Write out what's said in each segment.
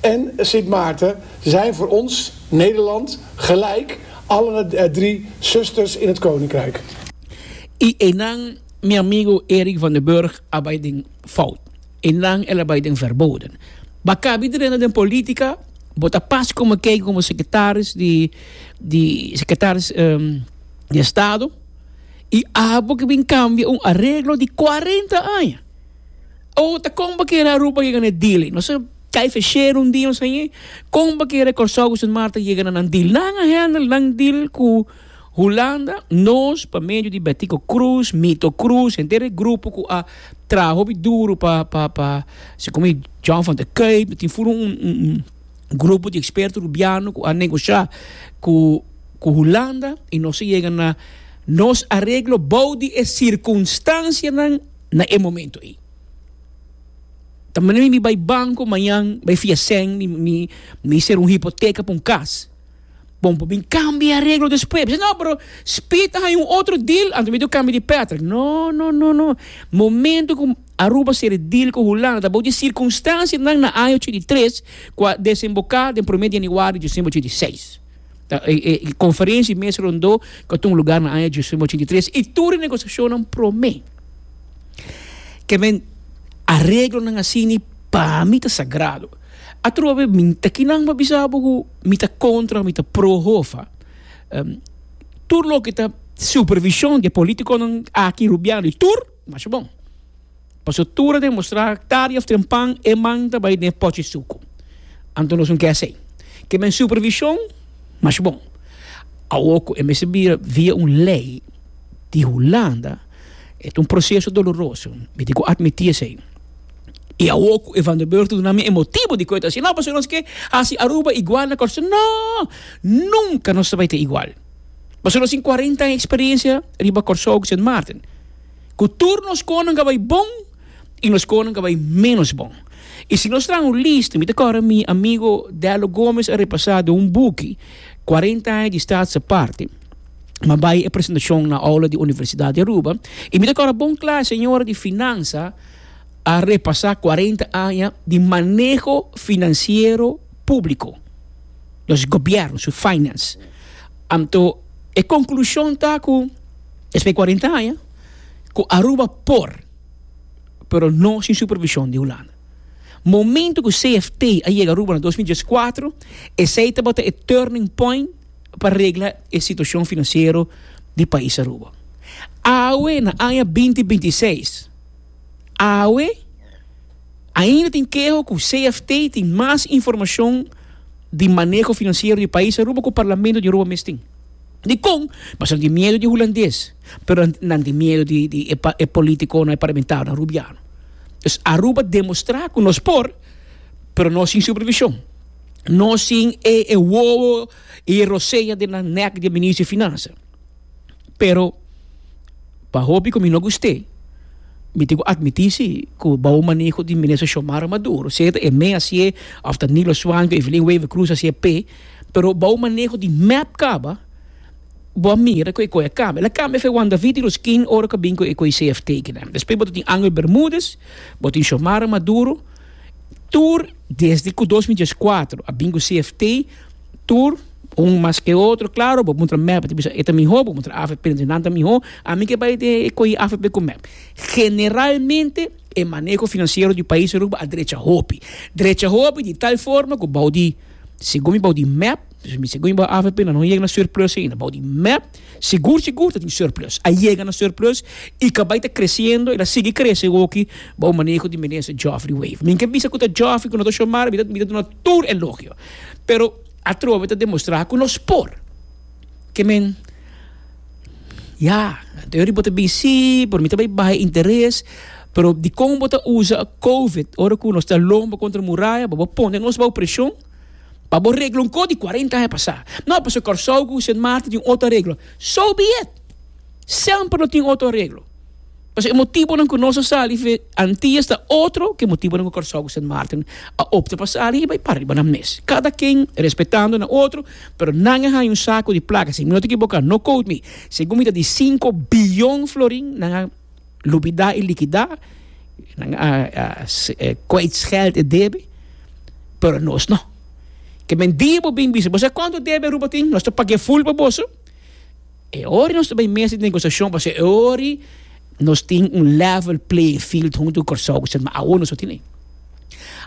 En Sint Maarten zijn voor ons, Nederland, gelijk allen het drie zusters in het koninkrijk. I einan mi amigo Erik van den Burg a bai den fout. Einan el a bai den verboden. Bo kabi drena den politica, bo ta pas como kei como secretaris di di secretaris di estado y abo ke bin cambia un arreglo di cuarenta aña. O ta kon pa kere Aruba yega na e deal ei? Nos a kai feshero un dia nos a yei, kon pa kere Kòrsou ku Sint Maarten yega na nan deal? Nan a hendel nan deal ku Hulanda, nos pa medio di Betico Croes, Mito Croes, henter e grupo ku a traha hopi duru pa pa pa si komo e John van der Kuip, no tin furu un un un un grupo di eksperto Rubiano ku a negosha ku ku Hulanda i nos a yega na nos areglo bou di e sirkunstansianan. na e momento ei. Ta manera mi bai banco mañan bai fia cen mi mi mi ser un hipoteca pa un cas bon por bin cambia e reglo despues mi si no pero speed ta haya un otro deal anto mi debe cambia di Patrick no no no no momento cu Aruba ser e deal cu Hulanda ta bou di circunstancianan na aña ochenta y tres cu a desemboca den prome di januari di diciember ochenta y seis. Ta e e e konferensia, e mes rondó ku a tuma lugá na aña djisnove ochenta i tres i tur e negosiashonnan promé ke men areglonan a sini pa mi ta sagrado. Atrua bes mi ta kinan pa bisa bo ku mi ta kontra o mi ta pro Hofa. Tur loke ta supervishon di e politikonan aki rubiano i tur. Masha bon. Paso tur a demostrá tardi of tempan e man ta bai den e pochi suku. Anto nos no ke asei. Ke men supervishon? Masha bon. Awor ku e mester bira via un lei di Hulanda, e ta un proseso doloroso. Mi tin ku atmití esei. I awor ku e Van der Burg ta duna mi e motibu dikon e ta asina, pasobra nos ke hasi Aruba igual na Kòrsou? No! Nunka nos ta bai ta igual. Mas o menos tin cuarenta aña experiencia riba Kòrsou ku Sint Maarten. Ku tur nos konan ka bai bon i nos konan ka bai ménos bon. I si nos traha un lista, mi ta kòrda mi amigo Dello Gomez a repasá den un buki, Cuarenta aña di Staatse Parte. Mi a bai e presentashon na oula di Universidat di Aruba i mi ta kòrda bon kla e señora di finansa a repasá cuarenta aña di maneho finansiero, públiko, nos gobièrnu su finance. Anto e konklushon ta ku despues kuarenta aña ku Aruba por, pero no sin supervishon di Hulanda. Momento ku CFT a yega Aruba na dos mil dies kuatro esei tabata e turning point pa regla e situashon finansiero di pais Aruba. Awe na aña binti binti seis. Awe ainda tin keho ku CFT tin mas informashon di maneho finansiero di pais Aruba ku parlamento di Aruba mes tin. Dikon? Pasobra nan tin miedu di hulandes, pero nan tin miedu di e politikonan, e parlamentarionan rubiano. Dus Aruba demostrá ku nos por, pero no sin supervishon, no sin e wowo i e rosea den nan nèk di e minister di finansa. pero pa hopi ku mi no gust'é mi tin ku atmití si ku bou maneho di Minister Xiomara Maduro, sea ta Emé hasié òf ta Nilo Swan ku Evelyn Wever Croes hasié p'e, pero bou maneho di mep kaba bo a mira ku e koi a kambia. El a kambia fe Juan David di los King ora ku a bin ku e koi CFT aki nan. Despues bo ta tin Angel Bermudez, bo tin Xiomara Maduro, tur desde ku dos mi dies kuater a bin ku CFT, tur un mas ke otro claro bo mutra mep ta bisa e ta miho bo mutra afp nan ta bisa miho a mi ke bai te cohi afp cu mep generalmente e maneho financiero di pais Aruba a drecha hopi drecha hopi di tal forma cu bou di segun mi bou di mep si mi segun mi bou afp nan no yega na surplus ainda bou di mep segur segur ta tin surplus a yega na surplus y ca bai ta creciendo y ta sigui crece hoki bou maneho di minister Geoffrey Wever mi ke bisa cu ta Geoffrey cu no ta Xiomara mi ta mi ta duna tur elogio, pero atrobe ta demostrá ku nos por. Ke men, Ya, anterior bo ta bin sí, pero mi ta bai baha e interes, pero dikon bo ta usa covid ora ku nos ta lomba kontra muraya, bo bo pone nos bou preshon pa bo regla un kos di kuarenta aña pasá. No, pasobra Kòrsou ku Sint Maarten tin un otro regla. So be it! Semper lo tin otro areglo. Pasobra e motibonan cu nos a sali fi Antillas ta otro cu e motibonan cu Curaçao cu Sint Maarten a opta pa sali y bay pariba nan mes. Cada ken respetando nan otro, pero nan a haya un saco di placa, si mi no ta equiboca, no quote me, segun mi ta di cinco billon florin nan a lubida y liquida, nan a kwijtscheld e debe, pero nos no. Ke men dia bo bin bisa, bo sa cuanto debe Aruba tin? Nos ta pag'e full pa boso. E ora nos ta bay mesa di negociacion pasobra e ora y nos tin un level playing field hunto cu Curaçao cu Santmartin, awor nos no tin ey.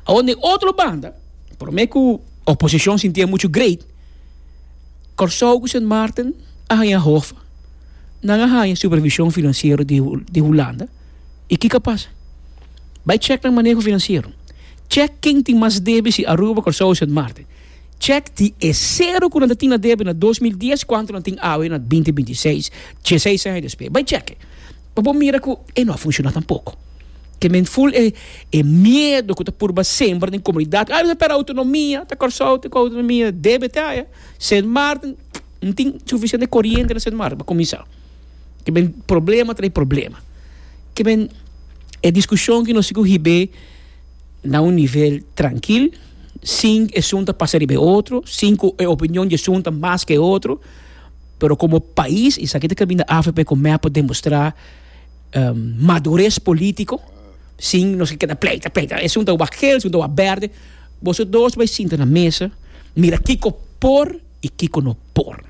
Awor den otro banda, prome cu oposicion sintia mucho great, Curaçao cu Santmartin a haya hof, nan a haya supervision financiero di Hulanda y kico pasa? Bay check nan maneho financiero, check ken tin mas debe si Aruba, Curaçao o Santmartin. Chek di e sero ku nan ta tin na debe na dos mil dies kuantu nan tin awe na binti binti seis, dieseis aña despues. Bai cheke pa bo mira ku e no a funshoná tampoko. Ke men ful e e miedu ku ta purba sembra den komunidat, ah mester pera outonomia, ta Kòrsou te ku outonomia, debe te aya. Sint Maarten, no tin sufisiente koriente na Sint Maarten pa kuminsá. Ke men problema trae problema. Ke men e diskushon ku nos si ku hib'é. na un nivel trankil, sin esun ta pasa riba e otro, sin ku e opinion di esun ta mas ke e otro, pero komo pais esaki ta kaminda afp ku mep por demostrá madures polítiko sin nos keda pleita pleita esun ta wak gel esun ta wak bèrdè, boso dos bai sinta na mesa mira kiko por i kiko no por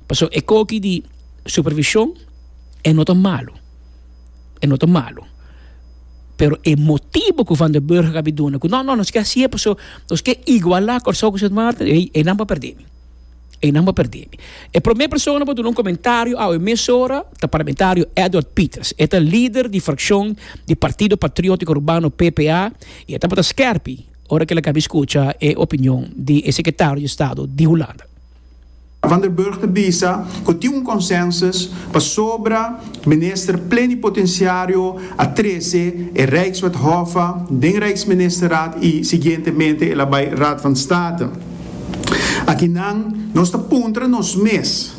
pasobra e koki di supervishon e no ta malu. e no ta malu pero e motibo ku van den burg a bin duna ku no no nos ke hasié paso nos ke igualá Kòrsou ku Sint Maarten ei einan por pèrdè mi einan por pèrdè mi e promé persona ku a duna un komentario awe mesora ta parlamentario Edward Pieters e ta lider di frakshon di Partido Patriótiko Urbano P P A i e tabata skèrpi ora ku ela'ka a bin skucha e opinion di e sekretario di Estado di Hulanda. Van der Burg ta bisa cu tin un consensus pasobra Minister Plenipotenciario a trece e Rijkswet Hofe den Rijksministerraad y siguientemente el a bay Raad van State. Aki nan nos ta puntra nos mes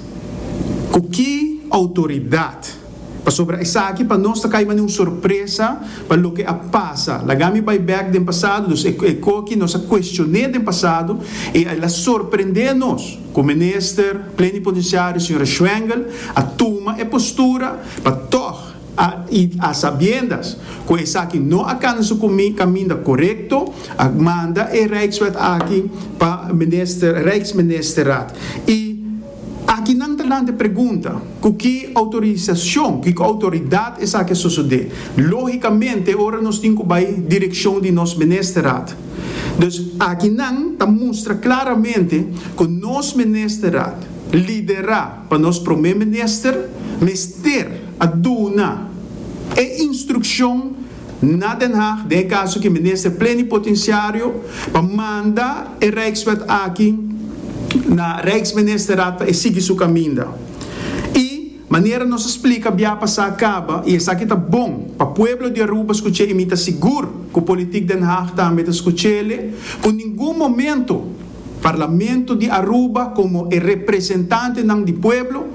cu ki autoridad? Pasobra esaki pa nos ta kai mane un sorpresa pa loke a pasa. Laga mi bai bek den pasado, dus e koki nos a kuestion'é den pasado i el a sorprendé nos ku minister plenipotensiario señora Schwengel a tuma e postura pa tòg a i a sabiendas ku esaki no a kanda su kaminda korekto a manda e Rijkswet aki pa Rijksministerraad i Aki nan ta lanta e pregunta, ku ki outorisashon, ku ki outoridat esaki a sosodé? Lógikamente ora nos tin ku bai direkshon di nos Ministerat. Dus aki nan ta mustra klaramente ku nos Ministerat, liderá pa nos Promé Minister, mester a duna e instrukshon, Na Den Haag den e kaso ki Minister Plenipotenciario pa manda e Rijkswet aki na Rijksministerraad pa e sigui su kaminda. I, manera nos a splika bia pasá kaba i esaki ta bon pa pueblo di Aruba skuch'é i mi ta sigur ku politik Den Haag tambe ta skuch'é, ku ningun momento, Parlamento di Aruba como e representantenan di pueblo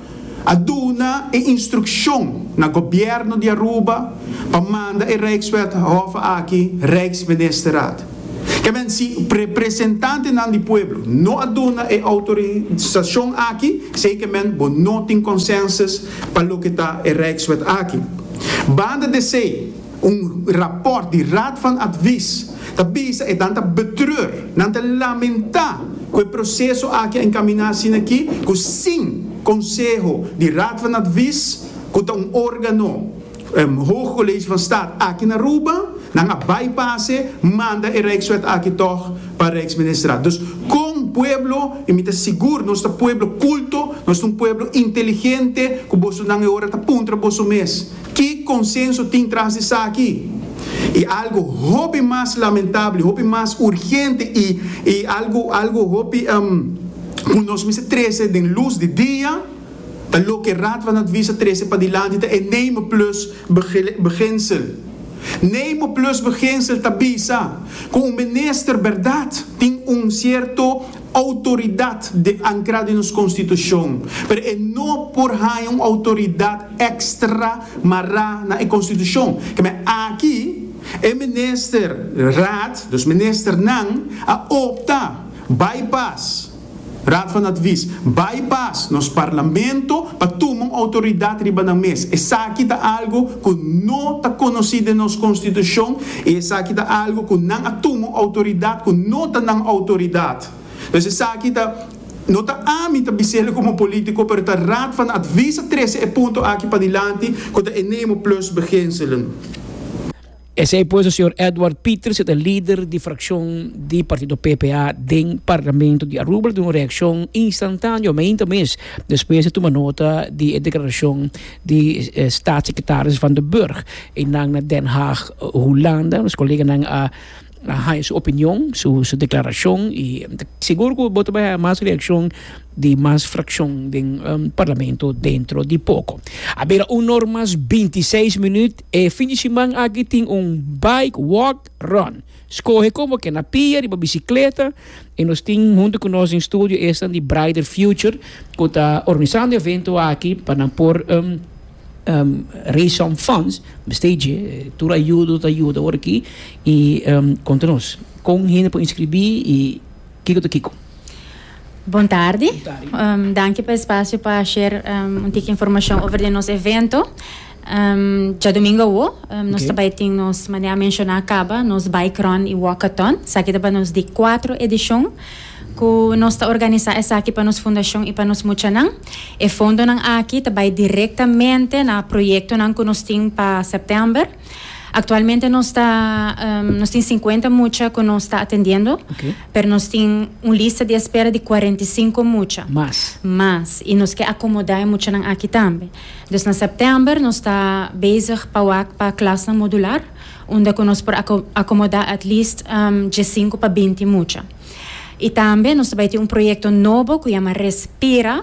a duna e instruccion na Gobierno di Aruba pa manda e Rijkswet Hof aki Rijksministerraad. Kebien si representantenan di pueblo no a duna e autorisacion aki zekerment bo no tin consensus pa loke ta e Rijkswet aki. Banda d'esey. Un rapòrt di Raad van Advies ta bisa e nan ta betreur, nan ta lamentá ku e proseso aki a enkaminá asina ki ku sin konseho di Raad van Advies ku ta un órgano Hoge College van Staat aki na Aruba, nan a bai pase manda e Rijkswet aki tòg pa Rijksministerat. Dus kon pueblo i mi ta sigur nos ta pueblo kulto, nos ta un pueblo inteligente ku bosonan e ora ta puntra boso mes, Ki konsenso tin tras di esaki? I algu hopi mas lamentabel, hopi mas urgente i i algu algu hopi ku nos mester trese den lus di dia ta loke Raad van Advies a trese padilanti ta e Name Plus Beginsel. Name Plus Beginsel ta bisa ku un minister bèrdat tin un sierto Outoridat de ankra den nos konstitushon, pero e no por haña un outoridat èkstra mará na e konstitushon. Kemey aki e minister raad, dus ministernan, a opta bypass Raad van Advies, bypass nos parlamento pa tuma un outoridat riba nan mes. Esaki ta algu ku no ta konosí den nos konstitushon. I esaki ta algu ku nan a tuma un outoridat ku no ta nan outoridat. Pues esaki ta, no ta ami ta bis'el komo polítiko, pero ta Raad van Advies a trese e punto aki padilanti ku ta e Nemo Plus beginselen. Esei pues ta señor Edward Pieters, e ta lider di frakshon di partido PPA den Parlamento di Aruba. El a duna un reakshon instantáneo meinta mes despues di tuma nota di e deklarashon. di Staatssecretaris Van den Burg einan na Den Haag, Hulanda. Nos koleganan a haña su opinion, su deklarashon i ta sigur ku bo ta bay haña mas reakshon di mas frakshon den Parlamento dentro di poko. A bira un nor mas binti seis minüt. E fin di siman aki tin un bike walk run. Skohe kon bo ke na pia riba bisikleta i nos tin huntu ku nos den studio esnan di Brighter Future ku ta organisando e evento aki pa nan por raise some funds, mester dje, tur ayudo ta yuda ora aki i konta nos kon hende por inskribí i kiko ta kiko. Bon tardi, danki pa e spasio pa share un tiki informashon over den nos evento. Djadumingu awo nos ta bai tin nos, manera a menshoná kaba, nos Bike Run i Walkathon. Esaki ta pa nos di kuatro edishon ku nos ta organisá esaki pa nos fundashon i pa nos muchanan. E fondonan aki ta bai direktamente na proyektonan ku nos tin pa sèptèmber. Aktualmente nos ta nos tin sinkuenta mucha ku nos ta atendiendo, pero nos tin un lista di espera di kuarenta i sinku mucha mas i nos ke akomodá e muchanan aki tambe. Dus na sèptèmber nos ta bezig pa wak pa klasnan modular, unda ku nos por a akomodá at least diesinku pa binti mucha. I tambe nos ta bai tin un proyekto nobo ku yama Respira,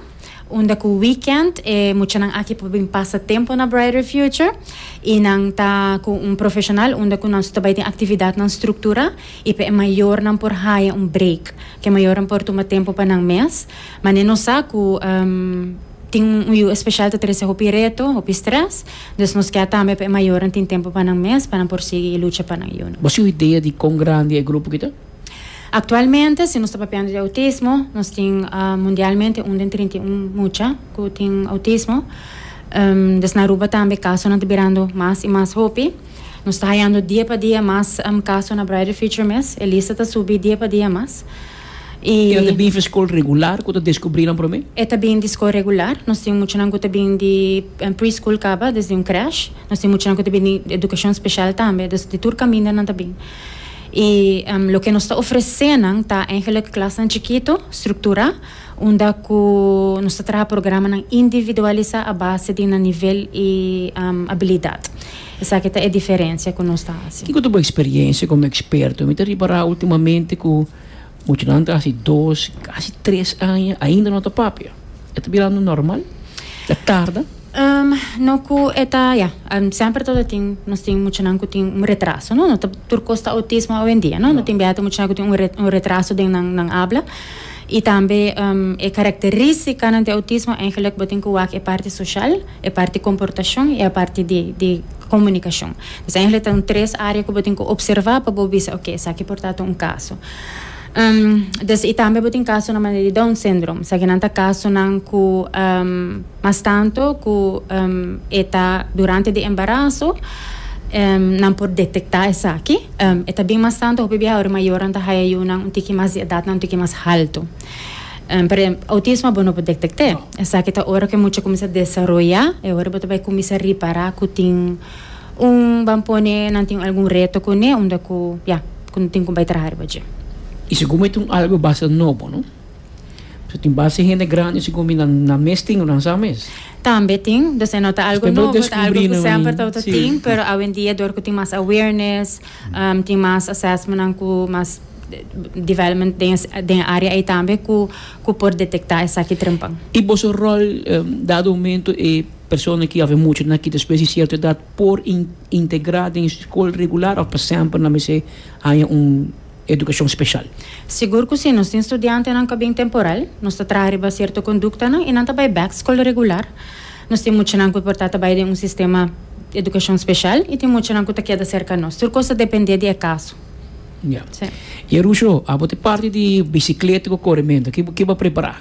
unda ku wikènt e muchanan aki por bin pasa tempu na Brighter Future i nan ta ku un profeshonal unda ku nos ta bai tin aktividatnan strukturá i p'e mayornan por haya un break ku e mayornan por tuma tempu pa nan mes. Mane nos sa ku. Tin un yu especial ta trece hopi reto, hopi stress, dus nos kier tambe pa e mayornan tin tempo pa nan mes pa nan por sigui e lucha pa nan yu no. Bo si un idea di con grandi e grupo ki ta? Actualmente si nos ta papiando di autismo nos tin mundialmente un den trinta i un mucha cu tin autismo, dus na Aruba tambe casonan ta birando mas y mas hopi, nos ta hayando dia pa dia mas caso na Brighter Future mes, e lista ta subi dia pa dia mas. E ta bin f'e skol regular ku ta deskubrí nan promé? E ta bin di skol regular. Nos tin muchanan ku ta bin di pre-school kaba, desde un crèche. Nos tin muchanan ku ta bin di edukashon speshal tambe. Dus di tur kaminda nan ta bin. I loke nos ta ofresé nan ta eigenlik klasnan chikitu, strukturá, unda ku nos ta traha programanan individualisá a base di nan nivel i abilidat. Esaki ta e diferensia ku nos ta hasi. Kiko ta bo eksperiencia komo eksperto? Mi ta ripará ultimamente ku muchanan ta hasi dos, kasi tres aña ainda no ta papia. E ta birando normal? Ta tarda? No ku e ta, ya, semper ta tin, nos tin muchanan ku tin un retraso, no? No ta tur kos ta autismo owendia, no? No tin biaha ta muchanan ku tin un retraso den nan habla i tambe e karakterístikanan di autismo, eigenlijk bo tin ku wak e parti soshal. e parti komportashon i e parti di di komunikashon. Pues ahí ta un tres área ku bo tin ku opservá pa bo bisa oke esaki por ta ta un kaso. Des i tambe bo tin kasonan manera di Down Syndrome, esaki nan ta kasonan ku mas tantu ku e ta durante di embaraso nan por detektá esaki. E ta bin mas tantu hopi biaha ora e mayornan ta haya yunan un tiki mas di edatnan un tiki mas haltu. Por ehempel, autismo bo no por detect'é. Esaki ta ora cu e mucha cuminsa desaroya, e ora bo ta bay cuminsa ripara cu tin un, ban pone, nan tin algun reto cun'é unda cu, ya, cu no tin cu bay traha riba dje. Y segun mi ta un algo basta nobo, no? Pasobra tin basta hende grandi segun mi nan, nan mes tin lo nan sa mes. Tambe tin. Dos'e no ta algo nobo, ta algo cu semper tabata tin, pero awendia dor cu tin mas awareness. Tin mas assessmentnan cu mas development den e area ei tambe cu por detecta esaki trempan. I boso rol dado momento e persona ki awe mucho na kita escuel si cierto edad por integra den school regular of pa semper nan mester haya un educacion special? Sigur cu si, nos tin studiantenan cu a bin temporal, nos ta traha riba cierto conductanan i nan ta bay back school regular. Nos tin muchanan cu por ta ta bay den un sistema educacion special y tin muchanan cu ta keda cerca nos. Tur cos ta depende di e caso. Ya. Y e Rusho, abo ta e parti di bicicleta cu corimento. Ki bo ki bo a prepara?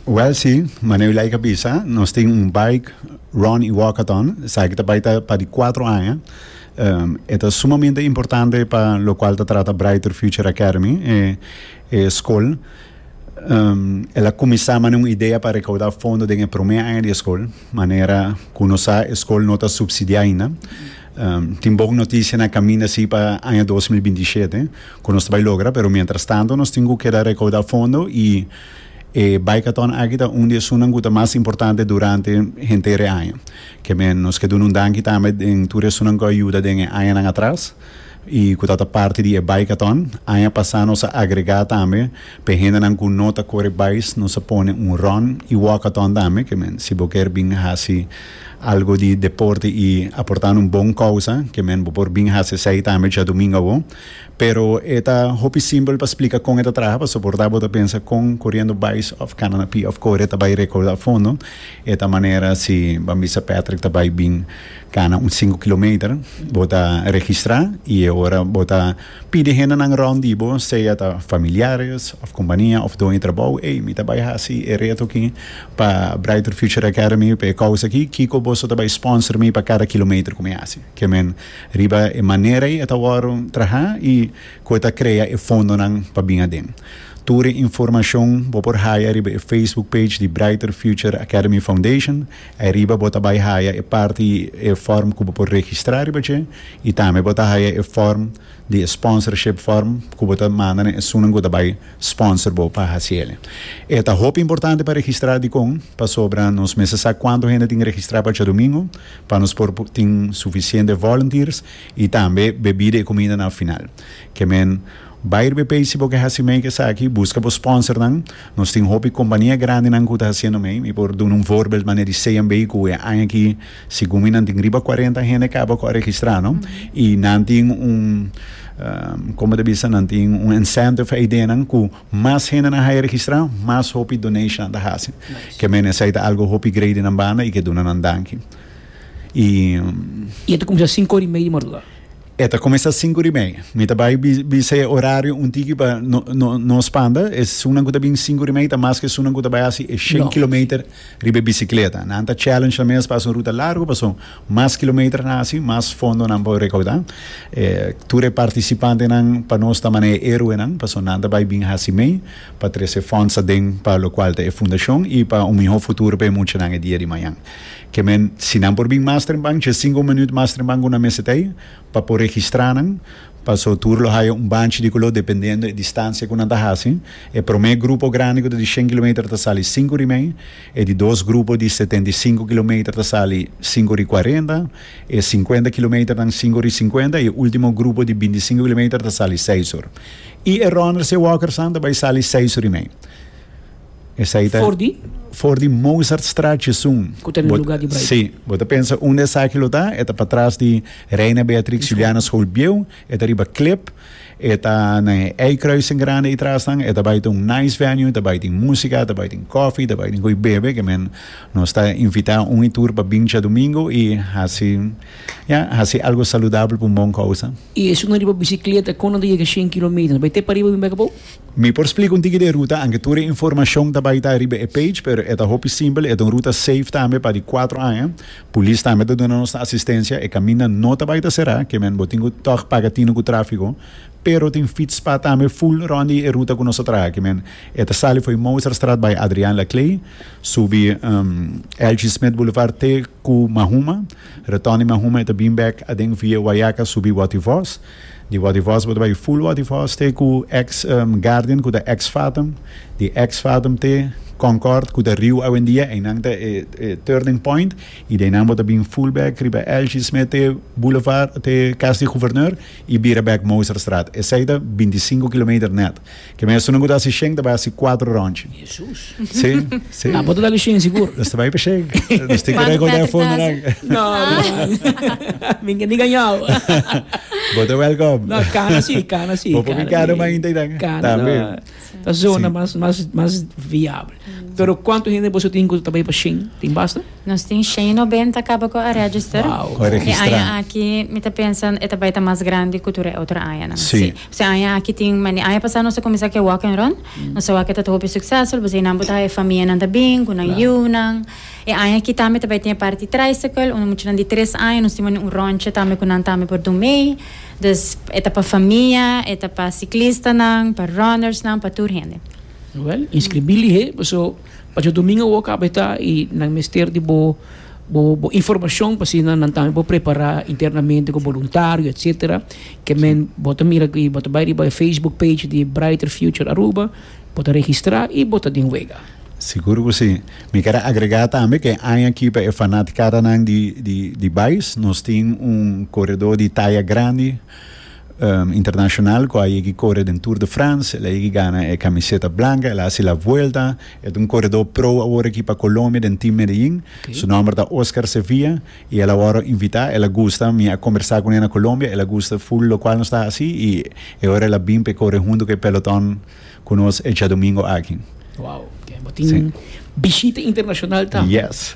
Wel si, mane u like a bisa, nos tin un bike run y walkathon, esaki ki ta bay ta pa di cuatro aña. E ta sumamente importante pa locual ta trata Brighter Future Academy, e e school. El a kuminsá mane un idea pa rekaudá fondo den e promé aña di e skol, manera ku nos sa e skol no ta supsidiá ainda. Tin bon notisia na kaminda si pa aña dos mil binti shete ku nos ta bai logra, pero mientrastanto nos tin ku keda rekaudá fondo i e baikaton aki ta un di esunnan ku ta mas importante durante henter e aña. Ke men nos ke duna un danki tambe den tur esunnan ku a yuda den e añanan atras. y cu ta ta parti di e Bikeathon. Aña pasa nos a agrega tambe pa e hendenan cu no ta core bice nos a pone un run y walkathon tambe, que men si bo kier bin haci algo di deporte y aporta na un bon causa que men bo por bin haci esai tambe djadomingo awo. Pero e ta hopi simpel pa splica con e ta traha pasobra por ta bo ta pensa con coriendo bice of cana na pia of core ta bay recorda a fondo e ta manera si ban bisa Patrick ta bay bin Kana un sinku kilometer bo ta registrá i e ora bo ta pidi hendenan rònt di bo, sea ta familiares òf kompania òf doño trabou, ey, mi ta bai hasi e reto aki pa Brighter Future Academy pa e kousa aki, kiko boso ta bai spònser mi pa kada kilometer ku mi hasi? Ke men riba e manera ei e ta wòrdu trahá i ku e ta krea e fondonan pa bin aden. Tur e informashon bo por haya riba e Facebook page di Brighter Future Academy Foundation Ai riba bo ta bai haya e parti e form ku bo por registra riba dje i tambe bo ta haya e form di e sponsorship form ku bo ta manda na esunnan ku ta bai sponsor bo pa hasi el. E ta hopi importante pa registra dikon pasobra nos mester sa kuantu hende tin registra pa djadumingu pa nos por tin sufisiente volunteers i tambe bebida i kumida na final. Ke men bai riba e page si bo ke hasi meik esaki buska bo sponsornan. Nos tin hopi kompania grandinan ku ta hasiendo mei. Mi por duna un voorbeeld manera di CMB ku e aña aki segun mi nan tin riba cuarenta hende kaba ku a registrá no i nan tin un como ta bisa nan tin un incentive eidenan ku mas hende nan haya registrá mas hopi donation nan ta hasi ke mene esei ta algo hopi grei di nan banda i ke duna nan danki i. I e ta kuminsá sinku ora i mei di mardugá. E ta cuminsa cinco di mei. Mi ta bay bisa e horario un tiki pa nos panda. Esunnan cu ta bin cinco di mei ta mas cu esunnan cu ta bay haci e shen kilometer riba e bicicleta. Nan ta challenge nan mes pa haci un ruta largo pasobra mas kilometer nan haci mas fondo nan por recauda. Tur e participantenan pa nos ta mana e heroenan pasobra nan ta bay bin haci mei pa trece funds aden pa locual ta e fundacion y pa un miho futuro pa e muchanan e dia di mañana. Ke men, si nan por bin mas tremban, dje sinku minüt mas tremban ku nan mester ta ei pa por registrá nan. Pasó tur lo haya un banchi di kuló dependendo e distansia ku nan ta hasi. E promé grupo grandi ku ta di shen kilometer ta sali sinku rimei, e di dos grupo di setenta i sinku kilometer ta sali sinku ri kuarenta, e sinkuenta kilometer nan sinku ri sinkuenta i e último grupo di binti sinku kilometer ta sali seis ur. I e ròner si e wòker san ta bai sali seis ur i mei. Esai ta For di? for di Mozartstraat esun. Ku ta na Bo- lugar di Braai. Sí, bo ta pensa unda esaki lo ta? E ta patras di Reina Beatrix Juliana School bieu, e ta riba Klip, e ta na e eikruising grandi ei trasnan, e ta bai ta un nice venue, ta bai tin músika, ta bai tin kòfi, ta bai tin koe bebe, ke men nos ta invitá un i tur pa bin djadumingu i hasi, ja, hasi algu saludabel pa un bon kousa. I esun na riba bisikleta, kon nan ta yega shen kilometer? Nan bai te pariba bin bek abou? Mi por splica un tiki di e ruta, anke tur e informacion ta bai ta riba e page, pero e ta hopi simpel, e ta un ruta safe tambe pa di cuatro aña, Polis tambe ta duna nos asistencia, e caminda no ta bai ta cera, kemen bo tin cu tog paga tine cu trafico, pero tin fietspad tambe full rond di e ruta cu nos ta traha, kemen e ta sali fo'i Mozartstraat bai Adriaan Laclay, subi LG Smith Boulevard te cu Mahuma, retorn di Mahuma e ta bin back aden via Wayaca subi Wativos. Di Wadivast bo ta bai full Wadivast te ku ex Guardian ku ta ex Fathom, di ex Fathom te Concord ku ta Riu awendia, einan ta e turning point i di einan bo ta bin full bek riba Elsie Smith te Boulevard te Cas di Gouverneur i bira bek Mozartstraat. Esei ta binti sinku kilometer nèt. Ke mesun no ku ta hasi shen ta bai hasi kuater rònchi. Jesus. Si, si. Tampo ta tabel shen sigur. Nos ta bai pa shen. Nos tin ke rekorda e fondo nan. No man. Mi ke ni gañau. Bo ta wèlkòm. No, kana si, kana si. Bo por mi kana man inta ei nan. Kana no. Tambe. Ta zona mas mas mas viabel. Pero kuantu hende boso tin ku ta bai pa shen? Tin basta? Nos tin shen i nobenta kaba ku a register. Wao. Ku a registrá. E aña aki mi ta pensa e ta bai ta mas grandi ku tur e otro añanan. Si. P'esei aña aki tin mane. Aña pasá nos a kuminsá ku e Walk and Run. Nos a wak ku ta hopi suksesful p'esei nan bo ta haña e famianan ta bin ku nan yunan. E aña aki tambe ta bai tin e parti tricycle unda muchanan di tres aña nos tin mane un rònchi tambe ku nan tambe por dun mei. Dus e ta pa famia, e ta pa siklistanan, pa runners nan, pa tur hende. Wèl, inskribí lihé, paso. Pacha domingo awor caba eta y nan mester di bo bo informacion pa asina nan tambe por prepara internamente cu voluntario etcetera ke men bo ta mira aki bo ta bay riba e facebook page di Brighter Future Aruba bo ta registra y bo ta den wega. Sigur cu si. Mi quiere agrega tambe que e aña aki pa e fanaticadanan di di di bais nos tin un coredor di taya grandi. internacional cu a yegi core den Tour de France, el a yegi gana e camiseta blanca, el a haci la vuelta, e ta un coredor pro awor aki pa Colombia den Team Medellin, okay. su nomber ta Oscar Sevilla, y el a worde invita, el a gusta, mi a conversa cune na Colombia, el a gusta full locual nos ta haci, y e ora el a bin pe core hunto cu e peloton. Cu nos echa domingo aki. Wow. Oke, bo tin bishita internacional tambe. Yes.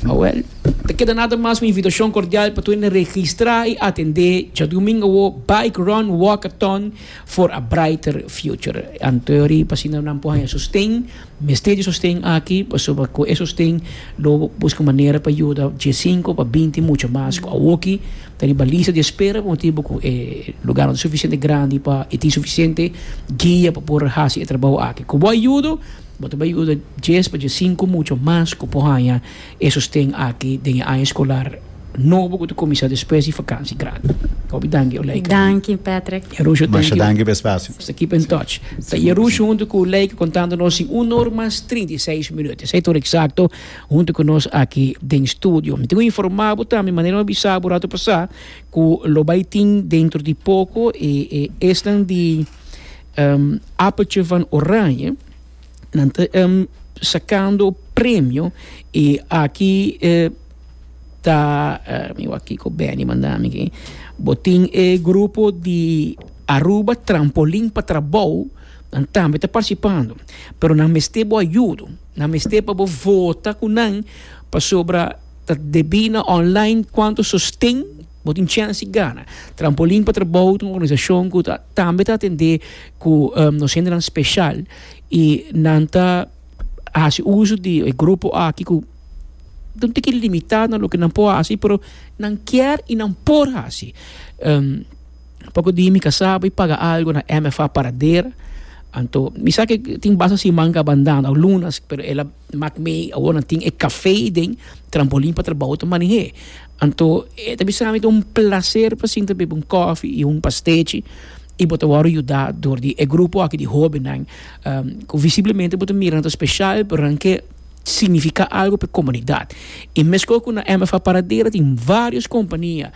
Awel, ta keda nada mas un invitacion cordial pa tur hende registra y atende djadomingo awo Bike Run Walkathon for a Brighter Future. Anto e ori, pa asina nan por haya sosten. Mester di sosten aki pasobra cu e sosten lo busca manera pa yuda dje sinku pa binti mucha mas cu awoki ta riba lista di espera pa motibu cu e lugar no ta suficiente grandi pa y tin suficiente guia pa por haci e trabao aki. Cu bo a yuda bo ta bay yuda djes pa dje sinku mucha mas cu por haya E sosten aki den e aña escolar nobo cu ta cuminsa despues di vakantie grandi. Hopi danki Olayke. Danki Patrick. Yerusho thank you. Masha danki pa e spacio. Nos ta keep in touch. Ta Yerusho hunto cu Olayke contando nos sin un or mas trinta i seis minut. Esey tur exacto hunto cu nos aki den studio. Mi tin cu informa bo tambe manera mi a bisa bo rato pasa cu lo bay tin dentro di poco e esnan di Appeltje van Oranje. nan ta sakando premio y aki ta mi wak kico Benny manda mi aki bo tin e grupo di Aruba trampolin pa trabou nan tambe ta participando pero nan mester bo ayudo nan mester pa bo vota cu nan pasobra ta debi na online cuanto sosten Bo tin chèns i gana. Trampolin pa Trabou ta un organisashon ku ta tambe ta atendé ku nos hendenan speshal i nan ta hasi uso di e grupo aki ku ta un tiki limitá na loke nan por hasi pero nan kier i nan por hasi. Poko di mi kasaba i paga algu na MFA Paradera anto mi sa ke tin basta siman kabandan òf lunas pero el a mak mi awor nan tin e kafé den Trampolin pa Trabou ta maneh'é. Anto e ta bisa na mi ta un placer pa sinta bebe un coffee y un pastechi y bo ta wòrdu yuda dor di e grupo aki di hobennan cu visiblemente bo ta mira nan ta special pero nan ke significa algo pa e comunidad y mescua cu na MFA Paradera tin varios compania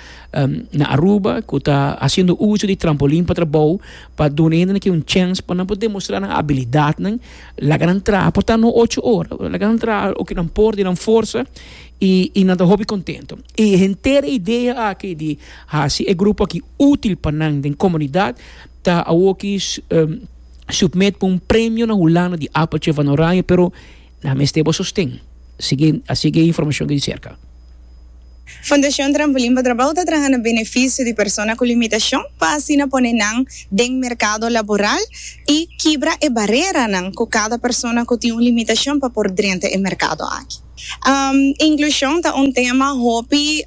na Aruba cu ta haciendo uso di trampolin pa trabou pa duna hende aki un chance pa nan por demostra nan habilidadnan laga nan traha por ta no ocho ora laga nan traha loke nan por den nan forsa. I i nan ta hopi kontentu. E henter idea aki di hasi e grupo aki útil pa nan den komunidat ta awoki submit pa un premio na Hulanda di Appeltje van Oranje, pero nan a mester bo sosten, sigui a sigui e informashon di serka. Fondashon Trampolin pa Trabou ta traha na benefisio di persona ku limitashon pa asina pone nan den merkado laboral i kibra e bareranan ku kada persona ku tin un limitashon pa por drenta e merkado aki. Inklushon ta un tema hopi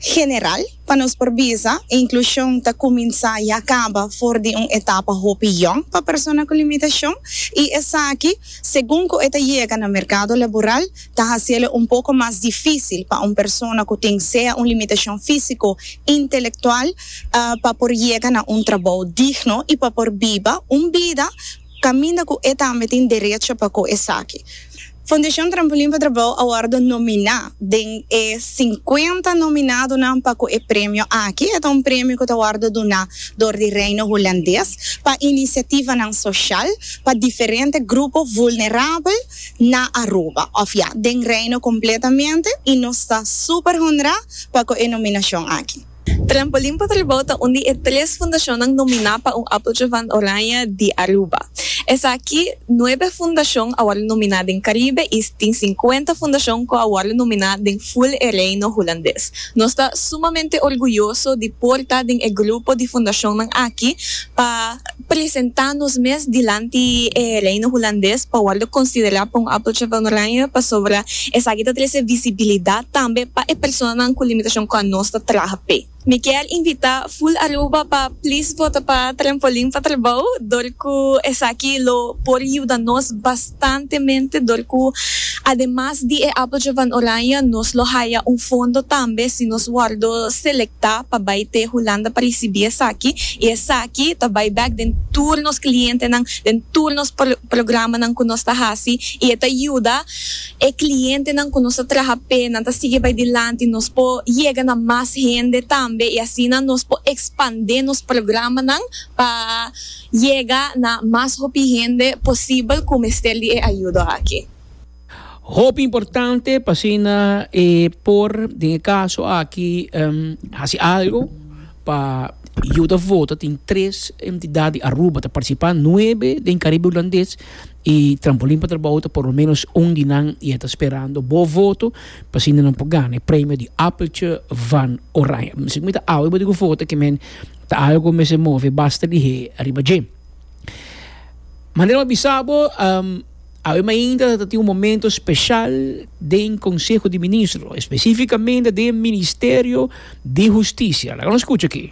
general, pa nos por bisa inklushon ta kuminsá i a kaba for di un etapa hopi yòn pa persona ku limitashon i esaki segun ku e ta yega na merkado laboral ta hasiélo un poko mas difísil pa un persona ku tin sea un limitashon físiko, intelektual pa por yega na un trabou digno i pa por biba un bida. Caminda cu e tambe tin derecho pa cu esaki. Fundacion Trampolin pa Trabao a wordo nomina den e cincuenta nominadonan pa cu e premio aki. E ta un premio cu ta wordo duna door di Reino Hulandes pa iniciativanan social pa diferente grupo vulnerabel na Aruba, of ya, den Reino completamente y nos ta super honra pa cu e nominacion aki. Trampolin pa Tribou ta un di e tres fundashonnan nominá pa un Appeltje van Oranje di Aruba. Esaki, nuebe fundashon a wòrdu nominá den Karibe i tin sinkuenta fundashon ku a wòrdu nominá den ful e Reino Hulandes. Nos ta sumamente orguyoso di por ta den e grupo di fundashonnan aki pa. presentá nos mes dilanti e Reino Hulandes pa wòrdu konsiderá pa un Appeltje van Oranje pasobra esaki ta trese visibilidat tambe pa e personanan ku limitashon ku anos ta traha p'e. Mi kier invitá Full Aruba pa plis vota pa Trampolin pa Trabou dor ku esaki lo por yuda nos bastante. importantemente dor cu ademas di e Appeltje van Oranje nos lo haya un fondo tambe si nos wordo selecta pa bay te Hulanda pa ricibi esaki y esaki ta bay bek den tur nos clientenan, den tur nos programanan cu nos ta haci y e ta yuda e clientenan cu nos ta traha p'e nan ta sigui bay dilanti, nos por yega na mas hende tambe y asina nos por expande nos programanan pa. Yega na mas hopi hende posibel ku mester di e ayudo aki. Hopi importante pa asina e por den e kaso aki hasi algo pa yuda vota. Tin tres entidat di Aruba ta partisipa, nuebe den Karibe Hulandes i Trampolin pa Trabou ta por lo menos un di nan i e ta sperando bo voto pa asina nan por gana e premio di Appeltje van Oranje. Miskien bo ta awe bo di ku vota, ke men. ta algo cu mester move basta di hei ariba dje. Manera mi a bisa bo, um, awe mainta ta tin un momento special den Conseho di Ministro, especificamente den Ministerio di Husticia. Laga nos scucha ki.